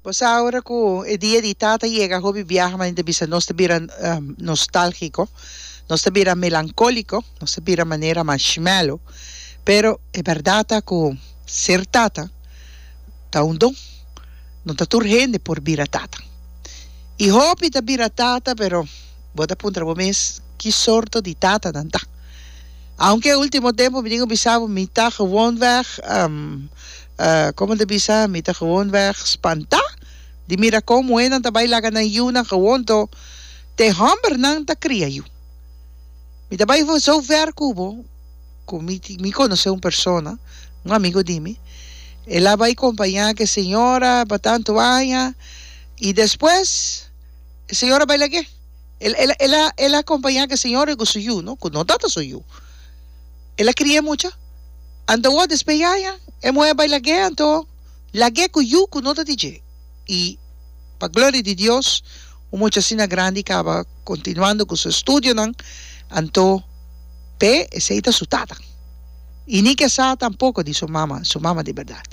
Bo sa ora ku e dia di Tata yega hopi biaha manera ta bisa nos ta bira nostálgiko, nos ta bira melankóliko, nos ta bira manera mashmelo, pero e bèrdat ta ku ser tata ta un don, no ta tur hende por bira tata. I hopi ta bira tata pero bo ta puntra bo mes ki sorto di tata nan ta. Aunke e último tempu mi tin ku bisa bo mi ta gewonweg Komo ta bisa, mi ta gewoonweg spantá di mira kon muhénan ta bai laga nan yunan gewoon to, te hòmbernan ta kria yu. Mi ta bai sou ver ku bo ku mi mi konosé un persona, un amigu di mi, el a bai kompañá ku e señora pa tantu aña i despues e señora bai lag'é. El el a el a kompañá ku e señora i ku su yu, no, ku no ta ta su yu. El a cria e mucha. Anto awor despues yaya e muher bay lag'e anto lag'e cu yu cu no ta di dje. Y pa gloria di Dios un mucha asina grandi caba continuando cu su estudionan anto p'e esey ta su tata y ni ke sa tampoco di su mama, su mama di berdad.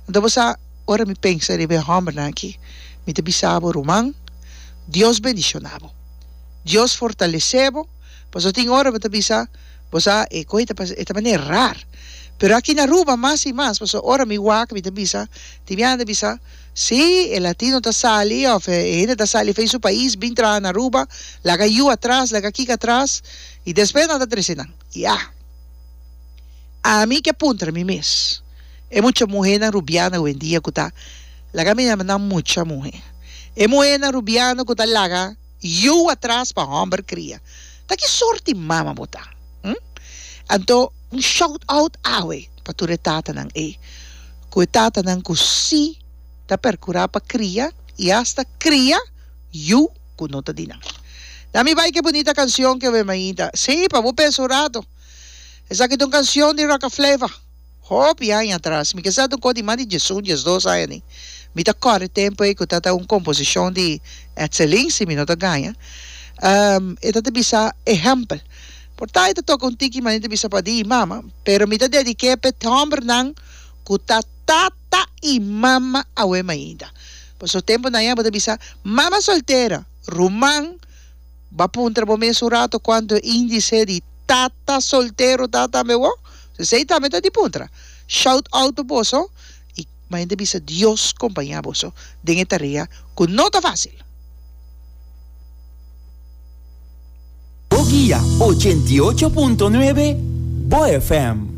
Anto bo sa ora mi pensa riba e hombernan aki mi ta bisa bo ruman Dios bendiciona bo, Dios fortalece bo pasobra tin ora bo ta bisa Bo sa, e koi ta pasa, e ta manera rar. Pero aki na Aruba mas i mas, pasobra ora mi wak mi ta bisa, tin biaha ta bisa, si, e latino ta sali of e hende ta sali fen su pais bin traha na Aruba, laga yu atras, laga kiko atras, i despues nan ta trese nan. Ya. Ami ke puntra mi mes, e mucha muhernan rubiano hoendia ku ta laga mi nama nan mucha muher, e muhernan rubiano ku ta laga, Yu atras pa homber cria. Ta ki sort di mama bo ta? Hm? Anto un shout out awe pa tur e tatanan ey. Cu e tatanan cu si ta percura pa cria y hasta cria yu cu no ta di nan. Na mi bay ke bunita cancion ke we mainta. Si, pa bo pesa un rato. Esaki ta un cancion di Rocka Flava. Hopi aña atras, mi kesa ta un kos di mas di diesun, diesdos aña ni, mi ta kòrè tempu ei ku ta ta un komposishon di Etselin, si mi no ta gaña, e ta ta bisa ehèmpel. Por ta e ta toka un tiki manera ta bisa padi i mama, pero mi ta dedik'é p'e hòmbernan ku ta tata i mama awema ainda. Pasobra tempunan ei abo ta bisa mama soltera, ruman, Ba puntra bo mes un rato cuanto e indice di tata soltero ta tambe bo? Si esey tambe ta di puntra, shout out pa boso y mainta bisa Dios compaña boso den e tarea cu no ta facil. Bo guia ochenta y ocho punto nuebe, Bo FM.